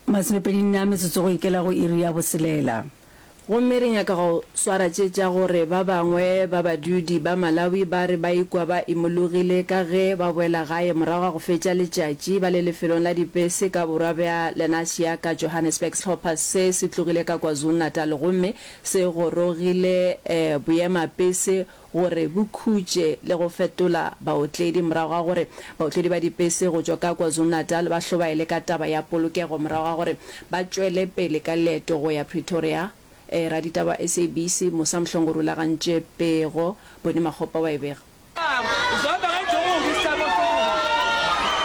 Masomepedi nne a metsotso go ikela go iri ya boselela. Gomme re nyaka go swara tše tša gore ba bangwe ba badudi ba Malawi ba re ba ikwa ba imologile ka ge ba boela gae morago ga go fetša letšatši ba le lefelong la dipese ka borwa bja Lenasia ka Johannesburg. Sehlopha se se tlogile ka KwaZulu-Natal gomme se gorogile boemapese gore bo khutše le go fetola baotledi morago ga gore baotledi ba dipese go tšwa ka KwaZulu-Natal ba hlobaele ka taba ya polokego morago ga gore ba tšwele pele ka leeto go ya Pretoria. E, raditaba wa SABC Musa Mhlongo o rulagantše pego, Bonnie Makgopa wa e bega.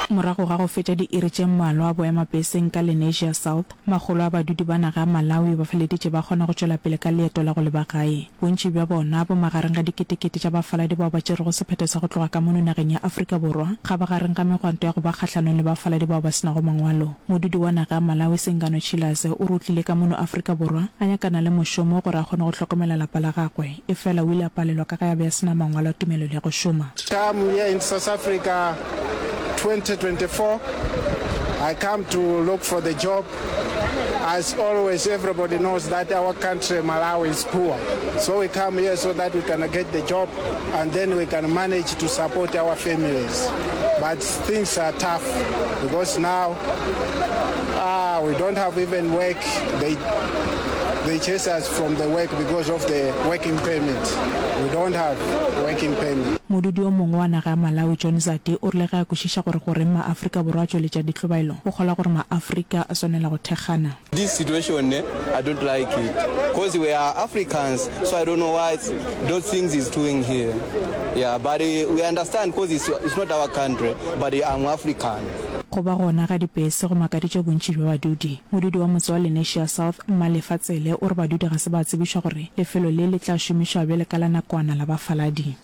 Morago ga go fetša diiri tše mmalwa boemapeseng ka Lenasia South, Makgolo a badudi ba naga ya Malawi ba feleditše ba kgona go tšwela pele ka leeto la go leba gae. Bontši bja bona, bo magareng ga diketekete tša bafaladi bao ba tšerego sephetho sa go tloga ka mono nageng ya Afrika Borwa, ga ba gareng ga megwanto ya go ba kgahlanong le bafaladi bao ba se nago mangwalo. Modudi wa naga ya Malawi Singano Chilaze o re o tlile ka mono Afrika Borwa a nyakana le mošomo gore a kgone go hlokomela lapa la gagwe. Efela o ile a palelwa ka ge a be a se na mangwalo a tumelelo ya go šoma. Term here in South Africa 2024 I come to look for the job as always everybody knows that our country Malawi is poor so we come here so that we can get the job and then we can manage to support our families but Things are tough because now uh, we don't have even work. They they chase us from the work because of the working permit. We don't have working permit. Modudi o mongwe wa naga ya Malawi, John Zadi, o rile ge a kwešiša gore goreng ma-Afrika Borwa a tšweletša ditlobaelo, o kgolwa gore ma-Afrika a swanela go thekgana. This situation ne I don't like it cause we are Africans so I don't know why those things is doing here yeah but we understand cause it's, it's not our country but I'm African. Go ba gona ga dibese go makaditše bontši bja badudi. Modudi wa motse wa Lenasia South, Mmalefa Tsele, o re badudi ga se ba tsebišwa gore lefelo le le tla šomišwa bjale ka la nakwana la bafaladi.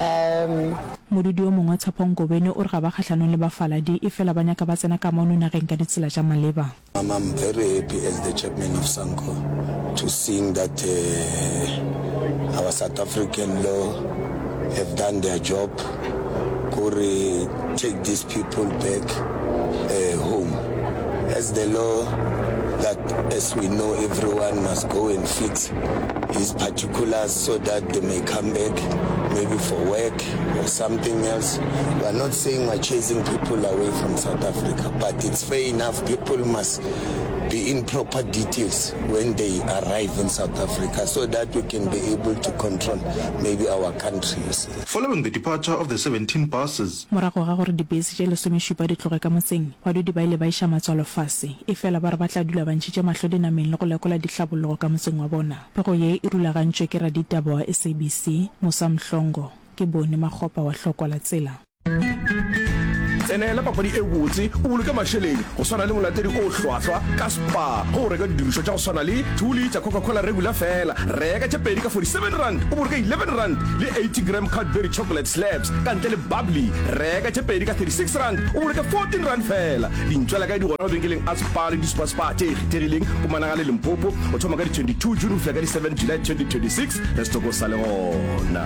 Umm. Modudi o mongwe, Tshepho Ngobeni, o re ga ba kgahlanong le bafaladi, efela ba nyaka ba tsena kamano nageng ka ditsela tša maleba. I'm I'm very happy as the chairman of Sanco to seeing that uh our South African law have done their job go re take these people back uh home as the law that as we know everyone must go and fix his particulars so that they may come back maybe for work or something else. We are not saying we are chasing people away from South Africa, but it's fair enough people must be in proper details when they arrive in South Africa so that we can be able to control maybe our countries. Following the departure of the 17 buses, Morago ga gore dibese tše lesomešupa di tloge ka motseng, badudi ba ile ba iša matswalo fase. Efela ba re ba tla dula ba ntšhitše mahlo dinameng le go lekola dihlabologo ka motseng wa bona. Pego ye e rulagantšwe ke raditaba wa SABC, Musa Mhlongo. Ke Boni Makgopa wa Hlokola Tsela. Tsenela papadi e botse o boloke mašeleng go swana le molatedi o hlwahlwa ka Spar ge o reka didirišwa tša go swana le two litre Coca-Cola Regular fela. Reka tše pedi ka forty-seven rand o boloke eleven rand le eighty gram Cadbury Chocolate Slabs ka ntle le Bubbly. Reka tše pedi ka thirty-six rand o boloke fourteen rand fela. Dintšwela kae di gona mabenkeleng a Palo le disupa-supa tše kgethegileng go managale Limpopo go thoma ka di 22 June go fihla ka di 7 July 2026 re se toko sa le gona.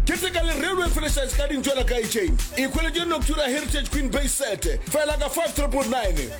Keteka le Railway Franchise ka dintšwela ka Echeng. Ikhweletše Noctura Heritage Queen Bay Set fela ka 5999.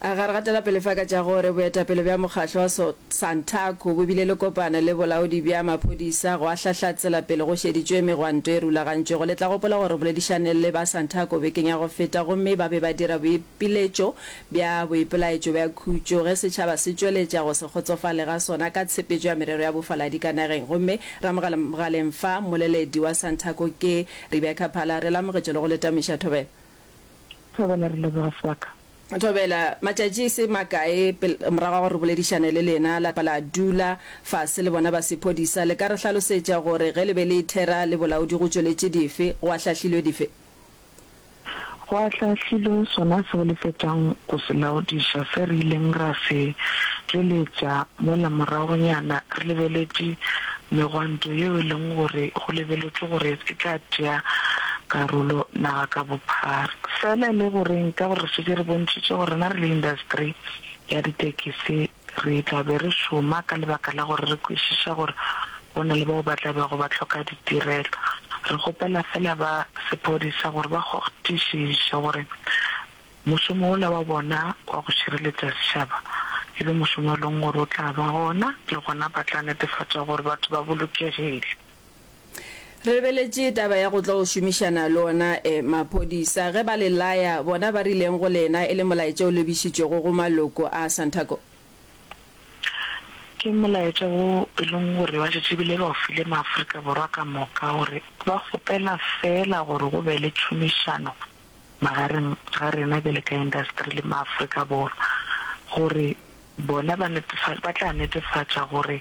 A ga re gatela pele fa ka tša gore boetapele bja mokgatlo wa Santaco bo bile le kopano le bolaodi bja maphodisa gwa hlahla tselapele go šeditšwe megwanto e rulagantšwego. Le tla gopola gore re boledišane le ba Santaco bekeng ya go feta gomme ba be ba dira boipiletšo bja boipelaetšo bja khutšo ge setšhaba se tšweletša go se kgotsofale ga sona ka tshepetšo ya merero ya bofaladi ka nageng. Gomme ra mogaleng fa, mmoleledi wa Santaco ke Rebecca Phala, re lamogetše le go le tameiša thobela. Ke bolela re leboga Swaka. Thobela, matšatši e se makae pel morago ga gore re boledišane le lena la la dula fase le bona ba sephodisa, le ka re hlalosetša gore ge le be le ithera le bolaodi go tšweletše dife, go ahlahlilwe dife? Go ahlahlilwe sona seo le fetšang go se laodiša se re ileng ra se tšweletša mola moragonyana re lebeletše Megwanto yeo e leng gore go lebeletšwe gore e tla tšea karolo naga ka bophara. Fela e le goreng? Ka gore re šetše re bontšhitše gore rena re le industry ya ditekisi re tla be re šoma ka lebaka la gore re kwešiša gore go na le bao ba tla bego ba hloka ditirelo. Re kgopela fela ba sephodisa gore ba kgotišiše gore Mošomo wola wa bona wa go šireletša sešaba e be mošomo e leng gore o tla ba gona le gona ba tla netefatša gore batho ba bolokegile. Re lebeletše taba ya go tlo šomišana le ona e maphodisa ge ba le laya, bona ba rileng go lena e le molaetša o lebišitšwego go maloko a Santaco? Ke molaetša wo e leng gore ba šetše bile ba o file Maafrika Borwa ka moka gore ba kgopela feela gore go be le tšhomišano magareng ga rena bjale ka industry le maAfrika Borwa gore bona ba netefatša ba tla netefatša gore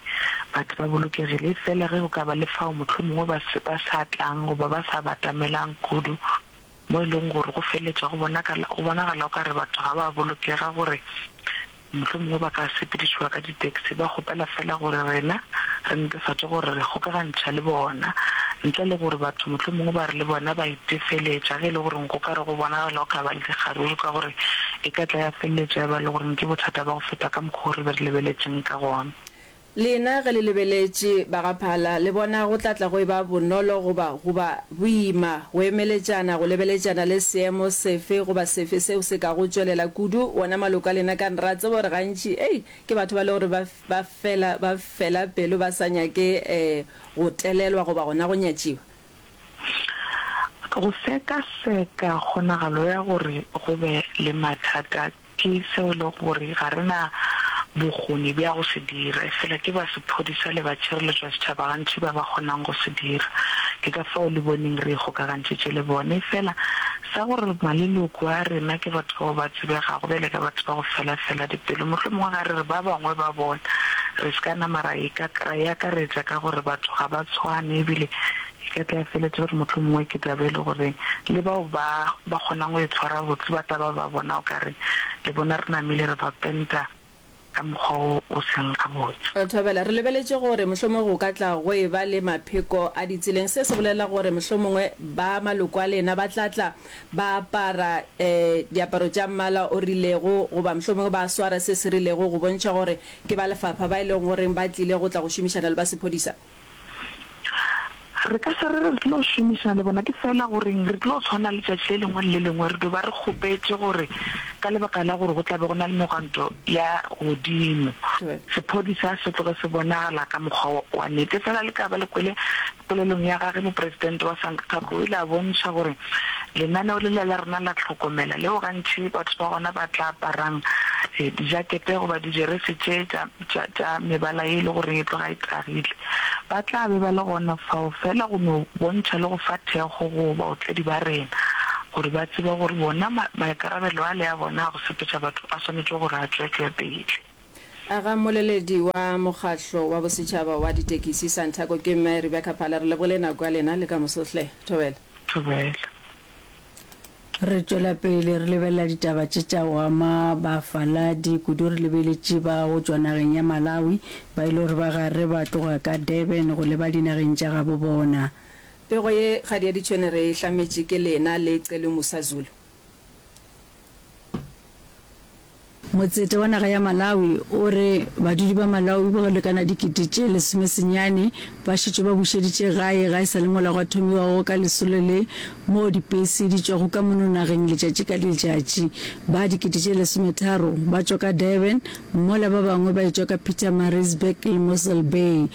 batho ba bolokegile e fela ge go ka ba le fao mohlomongwe ba se ba sa tlang goba ba sa batamelang kudu mo e leng gore go feletša go bonagala go bonagala o ka re batho ga ba bolokega gore Mohlomongwe ba ka sepedišwa ka ditaxi ba kgopela feela gore rena re netefatše gore re kgokagantšha le bona, ntle le gore batho mohlomongwe ba re le bona ba itefeletša ge e le gore go ka re go bonagala go ka ba le dikgaruru ka gore e ka tla ya feleletša e ba le gore ke bothata ba go feta ka mokgwa wo re be re lebeletšeng ka gona. Lena ge le lebeletše ba ga Phala, le bona go tla tla go eba bonolo goba goba boima go emeletšana, go lebeletšana le seemo sefe goba sefe seo se ka go tšwelela kudu? Wona maloko a lena kan ra tseba gore gantši, ei, ke batho ba le gore ba, ba fela, ba fela pelo, ba sa nyake eh, go telelwa goba gona go nyatšiwa. Go sekaseka kgonagalo ya gore go be le mathata Ke seo e lego gore ga re na bokgoni bja go se dira, efela ke ba sephodisa le ba tšhireletšo ya setšhaba gantši ba ba kgonang go se dira. Ke ka fao le boneng re ikgokagantšitše le bone. Efela, sa gore maleloko a rena ke batho bao ba tsebegago bjale ka batho ba go felafela dipelo, mohlomongwe ga re re ba bangwe ba bona re se ka nama ra e akaretša ka gore batho ga ba tshwane e bile Ke tla feletša gore mohlomongwe ke tla be e le gore le bao ba ba kgonang go e tshwara botse ba tla ba ba bona o ka re le bona re namile re ba penta ka mokgwa wo o seng gabotse. Thobela, re lebeletše gore mohlomongwe go ka tla go e ba le mapheko a ditseleng. Se se bolela gore mohlomongwe ba maloko a lena ba tla tla ba apara diaparo tša mmala o rilego goba mohlomongwe ba swara se se rilego go bontšha gore ke ba lefapha ba e lego goreng ba tlile go tla go šomišana le ba sephodisa. Re ka se re re tlo šomišana le bona, ke feela gore re tlo tshwana letšatši le lengwe le le lengwe re do ba re kgopetše gore ka lebaka la gore go tla be go na le megwanto ya godimo, sephodisa se tloge se bonagala ka mokgwa wa nnete. Feela le ka ba le kwele polelong ya gage, Mopresidente wa SANCTAC o ile a bontšha gore lenaneo lela la rena la tlhokomela, leo gantši batho ba gona ba tla aparang dijakete goba dijeresi tše tša tša, tša mebala ye e le gore e tloga e tagile, ba tla be ba le gona fao feela go no bontšha le go fa thekgo go baotledi ba rena gore ba tsebe gore bona ma, maikarabelo ale a bona a go sepetša batho a swanetše gore a tšwetšwe pele. A ga mmoleledi wa Mokgatlo wa Bosetšhaba wa Ditekisi, Santaco, ke Mme Rebecca Phala. Re lebogile nako ya lena le ka moso hle. Thobela. Thobela. Re tšwela pele re lebelela ditaba tše tša go ama bafaladi, kudu re lebeletše ba go tšwa nageng ya Malawi ba e le gore ba gare ba tloga ka Durban go leba dinageng tša gabo bona. Pego ye kgadi ya ditšhwene re e hlametše ke lena le Celu Musa Zulu. Motseta wa naga ya Malawi o re badudi ba Malawi ba go lekana dikete tše lesome senyane ba šetšwe ba bušeditše gae ga e sa le mola gwa thomiwa go ka lesolo le moo dipese di tšwago ka mono nageng letšatši ka letšatši. Ba dikete tše lesometharo ba tšwa ka Durban mola ba bangwe ba etšwa ka Pietermaritzburg le Mossel Bay.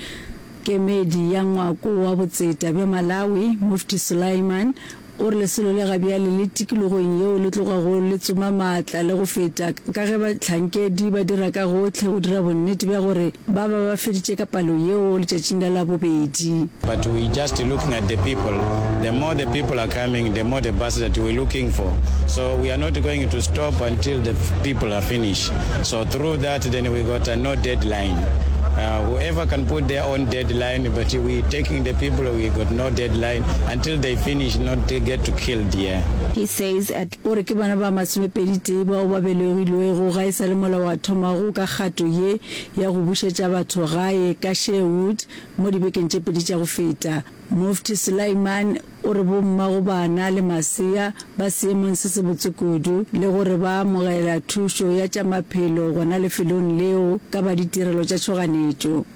Kemedi ya ngwako wa botseta bja Malawi, Mufti Sulaiman, O re lesolo le ga bjale le tikologong yeo le tlogago le tsoma maatla le go feta ka ge bahlankedi ba dira ka gohle go dira bonnete bja gore ba ba ba feditše ka palo yeo letšatšing la Labobedi. But we just looking at the people, the more the people are coming, the more the buses that we looking for, so we are not going to stop until the people are finish, so through that then we got a no deadline, whoever can put their own deadline, but we taking the people, we got no deadline until. Till they finish not they get to killed yeah. He says at. O re ke bona ba masomepeditee bao ba belegilwego ga e sa le molao a thomago ka kgato ye ya go bušetša batho gae ka Sherwood mo dibekeng tše pedi tša go feta. Mufti Sulaiman o re bommagobana le masea ba seemong se sebotse kudu le gore ba amogela thušo ya tša maphelo gona lefelong leo ka ba ditirelo tša tšhoganetšo.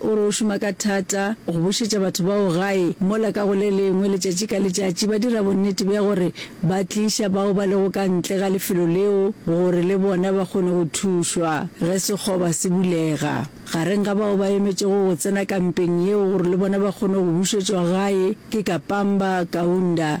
O re o šoma ka thata go bušetša batho bao gae mola ka go le lengwe letšatši ka letšatši ba dira bonnete bja gore ba tliša bao ba lego ka ntle ga lefelo leo gore le bona ba kgone go thušwa ge sekgoba se bulega. Gareng ga bao ba emetšego go tsena kampeng yeo gore le bona ba kgone go bušetšwa gae ke Kapamba Kaunda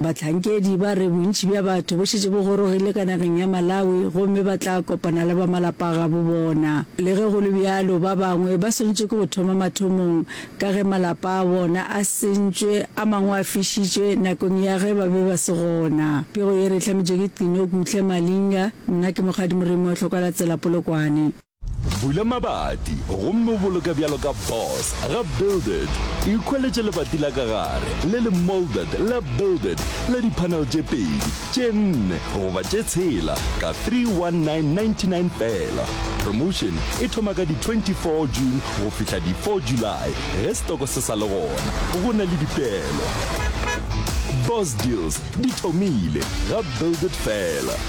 Bahlankedi ba re bontši bja batho bo šetše bo gorogile ka nageng ya Malawi gomme ba tla kopana le ba malapa gabo bona. Le ge go le bjalo, ba bangwe ba swanetše ke go thoma mathomong ka ge malapa a bona a sentšwe, a mangwe a fišitšwe nakong ya ge ba be ba se gona. Pego ye re e hlametšwe ke Qin'o Kuhle Malinga, nna ke Mokgadi Moremi wa Tlhokwalatsela Polokwane. Bula mabati gomme o boloke bjalo ka boss ga builded. Ikhweletše lebati la ka gare le le moulded la builded la di-panel tše pedi, tše nne goba tše tshela ka 319.99 feela. Promotion e thoma ka di 24 June go fihla di 4 July ge setoko se sa le gona. Go na le dipeelo. Boss deals di thomile ga builded feela.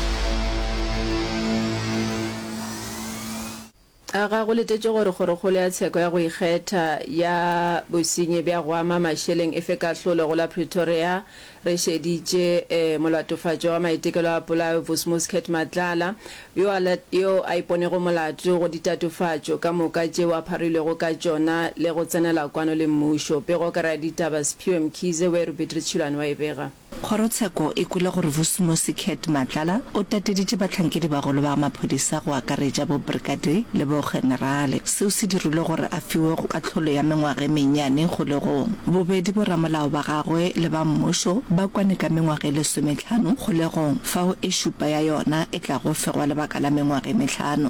A ga go letetše gore kgorokgolo ya tsheko ya go ikgetha ya bosenyi bja go ama mašeleng e fe kahlolo go la Pretoria? Re šeditše molatofatšwa wa maitekelo a polayo Vusmuskhet Matlala, yo a, yo a iponego molato go ditatofatšo ka moka tšeo a pharilwego ka tšona le go tsenela kwano le mmušo. Pego ka raditaba Sphiwe Mkhize, Weru Beatrice Tšhilwane wa e bega. Kgorotsheko e kwele gore Vusimusi Cat Matlala o tateditše bahlankedi-bagolo ba maphodisa go akaretša bobrigade le bogenerale. Seo se dirilwe gore a fiwe kahlolo ya mengwaga e mennyane kgolegong. Bobedi boramolao ba gagwe le ba mmušo ba kwane ka mengwaga e lesometlhano kgolegong, fao e šupa ya yona e tlago fegwa lebaka la mengwaga e mehlano.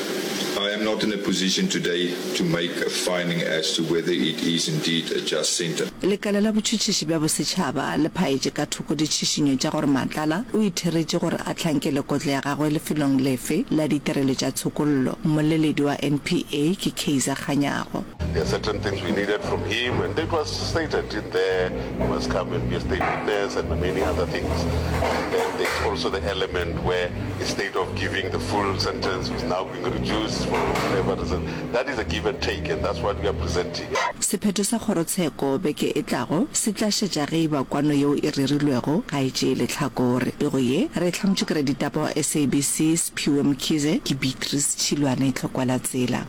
I am not in a position today to make a finding as to whether it is indeed a just centre. Lekala la Botšhotšhiši bja Bosetšhaba le phaetše ka thoko ditšhišinyo tša gore Matlala o itheretše gore a hlankele kotlo ya gagwe lefelong lefe la ditirelo tša tshokollo. Mmoleledi wa NPA ke Kaizer Kganyago. There are certain things we needed from him and it was stated in there, he must come and be a state witness and many other things. And then there's also the element where instead of giving the full sentence was now being reduced for whatever reason. That is a give and take and that's what we are presenting. Sephetho sa kgorotsheko beke e tlago se tla šetša ge eba kwano yeo e rerilwego ga e tšee lehlakore. Pego ye re e hlankotše ke raditaba wa SABC Sphiwe Mkhize, ke Beatrice Tšhilwane Tlhokwalatsela.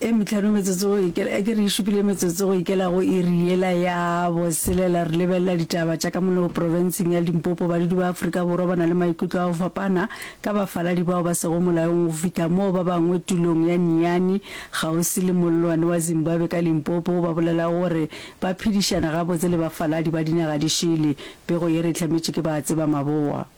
e metlhano metsotso go ikela e ke re e šupile metsotso go ikela go iri yela ya boselela re lebelela ditaba tša ka mono profenseng ya limpopo badudi ba aforika borwa ba na le maikutlo a go fapana ka bafaladi bao ba sego molaong go fihla moo ba bangwe tulong ya niani kgauswi le mollwane wa zimbabwe ka limpopo ba bolela gore ba phedišana gabotse le bafaladi ba dinaga di šele pego ye re e hlametše ke ba tseba maboa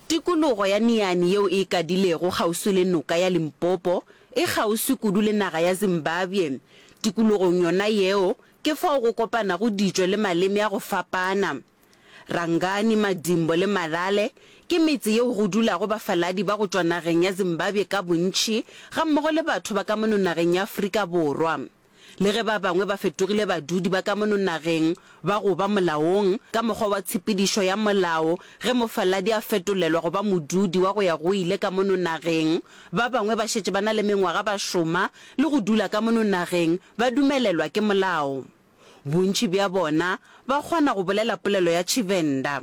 Tikologo ya Niani yeo e ikadilego kgauswi le noka ya Limpopo e kgauswi kudu le naga ya Zimbabwe. Tikologong yona yeo ke fao go kopanago ditšo le maleme a go fapana. Rangani, Madimbo le Malale ke metse yeo go dulago bafaladi ba go tšwa nageng ya Zimbabwe ka bontši gammogo le batho ba ka mono nageng ya Afrika Borwa. Le ge ba bangwe ba fetogile badudi ba ka mono nageng, ba go ba molaong, ka mokgwa wa tshepedišo ya molao, ge mofaladi a fetolelwa go ba modudi wa go ya go ile ka mono nageng, ba bangwe ba šetše ba na le mengwaga ba šoma le go dula ka mono nageng ba dumelelwa ke molao. Bontši bja bona ba kgona go bolela polelo ya Tshivenda.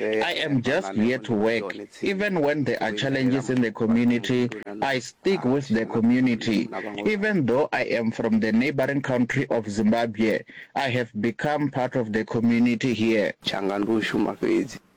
I am just here to work, even when there are challenges in the community, I stick with the community, even though I am from the neighbouring country of Zimbabwe, I have become part of the community here.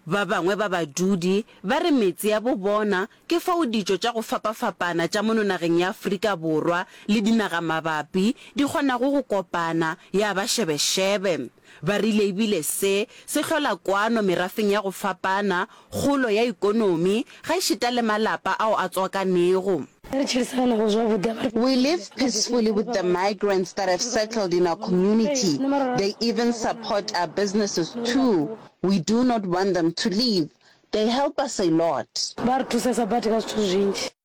Ba bangwe ba badudi ba re metse ya bo bona ke fao ditšo tša go fapafapana tša mono nageng ya Afrika Borwa le dinagamabapi di kgonago go kopana ya ba šebešebe. Ba rile e bile se se hlola kwano merafeng ya go fapana, kgolo ya ikonomi, gaešita le malapa ao a tswakanego. Ge re tšhedisaganago zwavhuḓi a ba. We live peacefully with the migrants that have settled in our community, they even support our businesses too, we do not want them to leave, they help us a lot. Ba re thusesa badi ka zwithu zwinzhi.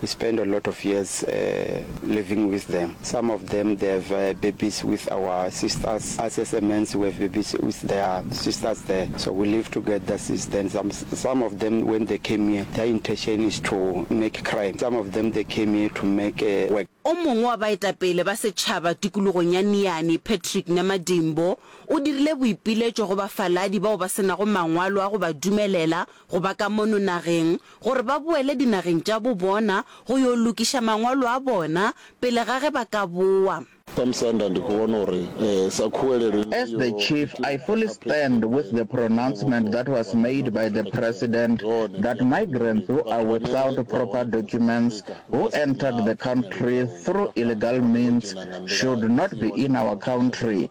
We spend a lot of years living with them. Some of them they have babies with our sisters. Us as a mans we have babies with their sisters there. So we live together since then. Some some of them when they came here their intention is to make crime. Some of them they came here to make work. O mongwe wa baetapele ba setšhaba tikologong ya Niani, Patrick Namadimbo, o dirile boipiletšo go bafaladi bao ba se nago mangwalo a go ba dumelela go ba ka mono nageng gore ba boele dinageng tša bo bona go yo lokiša mangwalo a bona pele ga ge ba ka boa. As the chief, I fully stand with the pronouncement that was made by the President that migrants who are without proper documents who entered the country through illegal means should not be in our country.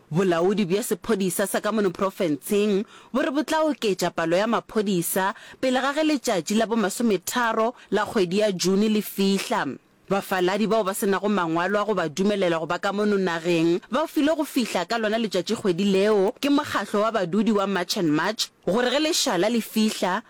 Bolaodi bja sephodisa sa ka mono profenseng bo re bo tla oketša palo ya maphodisa pele ga ge letšatši la bomasometharo la kgwedi ya June le fihla. Bafaladi bao ba se nago mangwalo a go ba dumelela go ba ka mono nageng ba filwe go fihla ka lona letšatšikgwedi leo ke mokgatlo wa badudi wa March and March gore ge lešala le fihla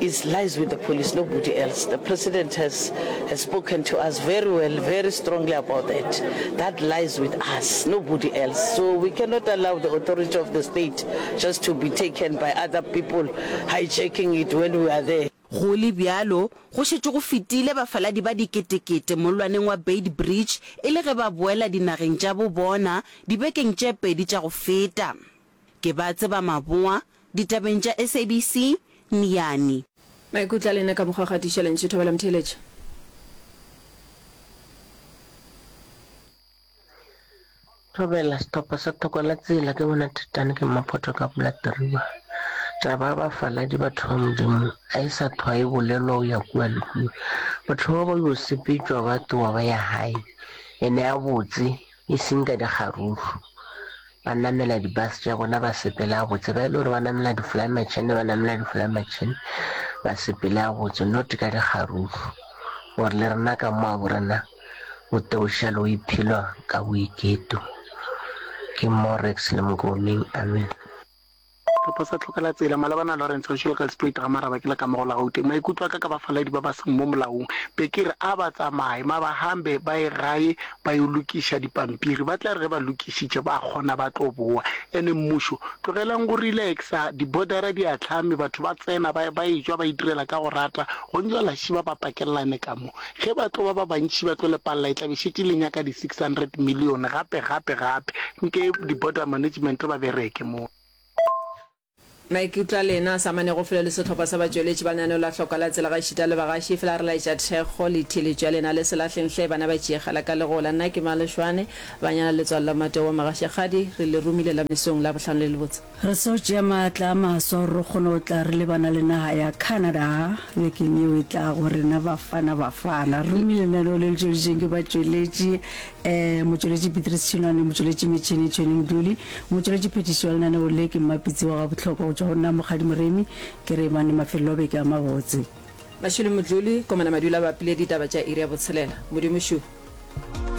It's lies with the police nobody else the president has has spoken to us very well very strongly about that that lies with us nobody else so we cannot allow the authority of the state just to be taken by other people hijacking it when we are there. Go le bjalo, go šetše go fetile bafaladi ba diketekete mollwaneng wa Beitbridge e le ge ba boela dinageng tša bo bona dibekeng tše pedi tša go feta. Ke ba tseba maboa, ditabeng tša SABC, Niyani. Maikutlo a lena ka mokgwa wa go atiša lentšu thobela motheeletša. Thobela, Sehlopha sa Thoko la Tsela, ke bona Titane ke Mmaphoto ka pula Teriba. Taba ya bafaladi batho ba Modimo ga e sa thwa e bolelwa o ya kua le kua. Batho bao ba yo sepetšwa ba tloga ba ya gae, ene a botse. e seng ka dikgaruru, ba namela di-bus tša bona ba sepela gabotse, ba e le gore ba namela di-fly machine ba namela di-fly machine ba sepele gabotse not ka dikgaruru gore le rena ka mo a borena o teošalo o iphelwa ka boiketo ke morex le mokomeng amen Re posa tlhoka la tsela. Malebana Lawrence wa Schuylkelspree Dramaraba ke la kamogo la Gauteng. Maikutlo a ka ka bafaladi ba ba seng mo molaong be ke re a ba tsamaye ma ba hambe ba ye gae ba yo lokiša dipampiri. Ba tla re ge ba lokišitše ba kgona ba tlo boa. Ene mmušo, tlogelang go relaxa, di bodara di ahlame, batho ba tsena ba ba etšwa ba itirela ka go rata, go ntšwa la šiba ba pakelelane ka mo. Ge ba tlo ba ba bantši ba tlo lepalla e tla be e šetše e le nyaka di 600 million gape gape gape nke di border management ba bereke mo. Maikutlo a lena a sa amanego felo le sehlopha sa batšweletši ba lenaneo la Hlokwa la Tsela gaešita le bagaši, efela re laetša thekgo le theeletšo ya lena le se lahleng hle bana ba tšeegala ka legola. Nna ke Malošwane, Banyana Letswalo la Matowa Magašekgadi, re le romile la mesong Labohlano le lebotse. Re seo tšea maatla a maswa gore re kgone go tla re lebana le naga ya Canada bekeng yeo e tlago. Rena Bafana Bafana re romile lenaneo le le tšweleditšweng ke batšweletši, eh, motšweletši Beatrice Tšhinwane, motšweletši metšhini Tshweni Moduli, motšweletši phetiši wa lenaneo le ke Mmapitsi wa Gabohlokwa go tšwa go nna Mokgadi Moremi. Ke Reimane Mafelelo a beke a mabotse. Mashilo Modluli, Komana Madula a bapile ditaba tša iri ya botshelela. Modimo Šuhu.